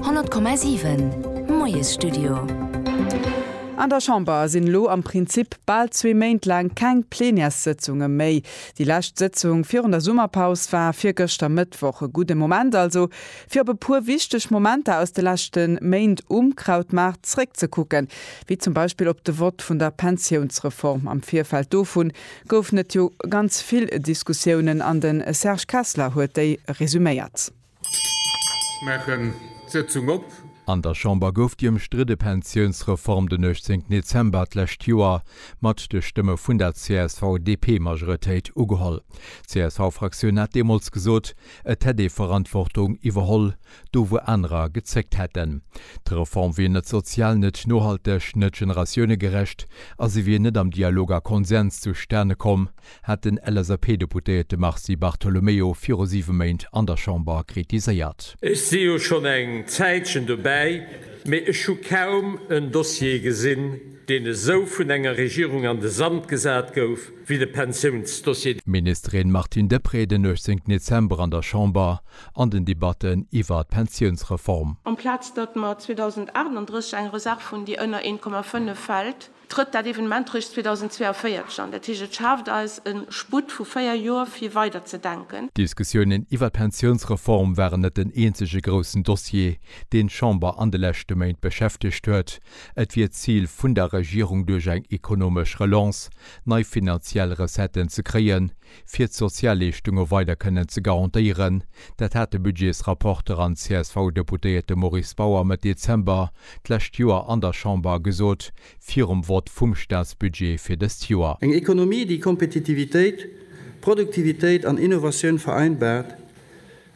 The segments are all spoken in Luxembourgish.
100,7 Moiesstudio. An der Chamber sinn elo am Prinzip bal zwee Méint laang keng Plenärssëtzunge méi. Déi lescht Sëtzung virun der Summerpaus war virgëschter Mëttwoch. E gudde Moment also, fir op e puer wichteg Momenter aus de leschte Méint um Krautmaart zréckzekucken, wéi zum Beispill op de Vott vun der Pensiounsreform. Am Virfeld dovun Goufen et jo ganz vill Diskussiounen an de Serge Kessler huet déi resuméiert. Ech maachen d'Sëtzung op. An der Chamber gouf déi ëmstridde Pensiounsreform den 18 Dezember d'lescht Joer mat de Stëmme vun der CSV-DP-Majoretéit ugeholl. D'CSV-Fraktioun hat deemools gesot, et hätt ee Verantwortung iwwerholl, do wou anerer gezéckt hätten. D'Reform wier net sozial, net nohalteg, net generatiounegerecht a se wier net am Dialog a Konsens zustane komm, hat den LSAP-Deputéierte Mars Di Bartolomeo viru siwe Méint an der Chamber kritiséiert. Ech si jo schonn eng Zäitchen dobäi, mee ech hu kaum en Dossier gesinn, deen esou vun enger Regierung an de Sand gesat gouf wéi de Pensiounsdossier. D'Ministerin Martine Deprez den 18 Dezember an der Chamber. an den Debatten iwwer d'Pensiounsreform. Amplaz datt mer 2038 eng Reserv hunn, déi ënner 1,5 fält, trëtt dat Evenement réischt 2042 an. Dat heescht, et schaaft eis e Sputt vu véier Joer, fir weider ze denken. D'Diskussiounen iwwer d'Pensiounsreform waren net den eenzege groussen Dossier, deen d'Chamber an de leschte Méint beschäftegt huet. Et wier d'Zil vun der Regierung, duerch eng ekonomesch Relance nei finanziell Recetten ze kréien, fir d'Sozialleeschtunge weider kënnen ze garantéieren. Dat hat de Budgetsrapporter an CSV-Deputéierte Maurice Bauer Mëtt Dezember d'lescht Joer an der Chamber gesot, virum Vott vum Staatsbudget fir dëst Joer. Eng Ekonomie, déi Kompetitivitéit, Produktivitéit an Innovatioun vereinbart,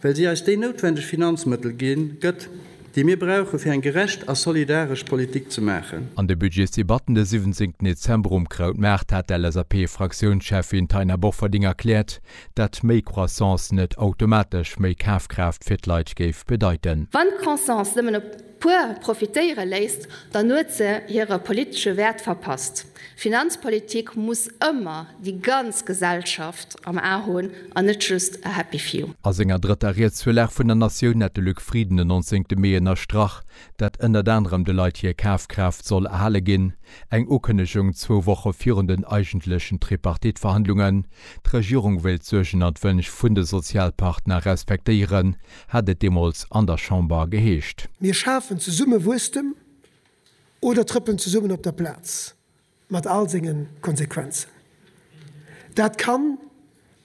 Well si eis déi noutwendeg Finanzmëttel ginn, gëtt, déi mir brauchen, fir eng gerecht a solidaresch Politik ze maachen. An de Budgetsdebatten de 17 Dezember um Krautmaart hat d'LSAP-Fraktiounscheffin Taina Bofferding erkläert, dat méi Croissance net automatesch méi Kafkraaft fir d'Leit géif bedeiten. Wann d'Croissance nëmmen op puer profitéiere léisst, dann huet se hire politesche Wäert verpasst. Finanzpolitik muss ëmmer déi ganz Gesellschaft am A hunn an net just a happy few. A senger drëtter Rietsvirlag vun der Natioun hat de Luc Frieden den 19 Mee ënnerstrach, datt ënnert anerem de Leit hir Kafkraaft soll erhale ginn, eng Ukënnegung zwou Woche virun den eigentlechen Tripartite-Verhandlungen. D'Regierung wéilt d'Suergen an d'Wënsch vun de Sozialpartner respektéieren, hat et deemools an der Chamber geheescht. Mir schafen zesumme Wuesstem oder trëppelen zesummen op der Plaz, mat all senge Konsequenzen. Dat kann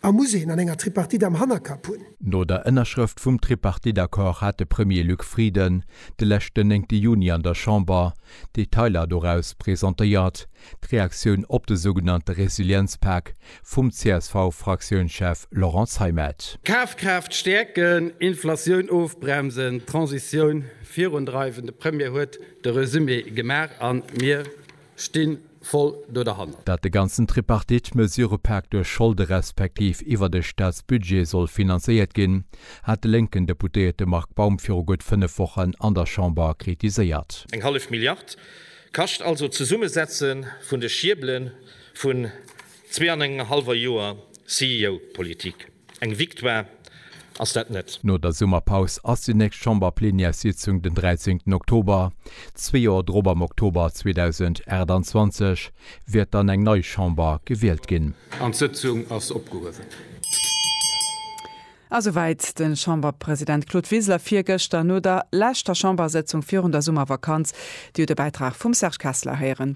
a muss een an enger Tripartite am Hannerkapp hunn. No der Ënnerschrëft vum Tripartite-Accord hat de Premier Luc Frieden de leschten néngte Juni an der Chamber d'Detailer doraus presentéiert, d'Reaktioun op de sougenannte Resilienzpak, vum CSV-Fraktiounschef Laurent Zeimet. Kafkraaft stäerken, Inflatioun ofbremsen, d'Transitioun virundreiwen, de Premier huet de Resumé gemaach a mir sti voll do derhannert. Datt de ganzen Tripartite-Mesurepak duerch Scholde respektiv iwwer de Staatsbudget soll finanzéiert ginn, hat de lénken Deputéierte Marc Baum viru gutt fënnef Wochen an der Chamber kritiséiert. Eng hallef Milliard kascht also d'Zesummesetze vun de Schiebelen. Vun zwee an engem hallwer Joer CEO-Politik, eng Victoire ass dat net. No der Summerpaus ass déi nächst Chamberplenièrssitzung den 13 Oktober. Zwee Joer drop, am Oktober 2028, wäert dann eng nei Chamber gewielt ginn. An d'Sëtzung ass opgehuewen. A souwäit de Chamberpresident Claude Wiseler virgëschter no der leschter Chambersëtzung virun der Summervakanz. Dir hutt e Bäitrag vum Serge Kessler héieren.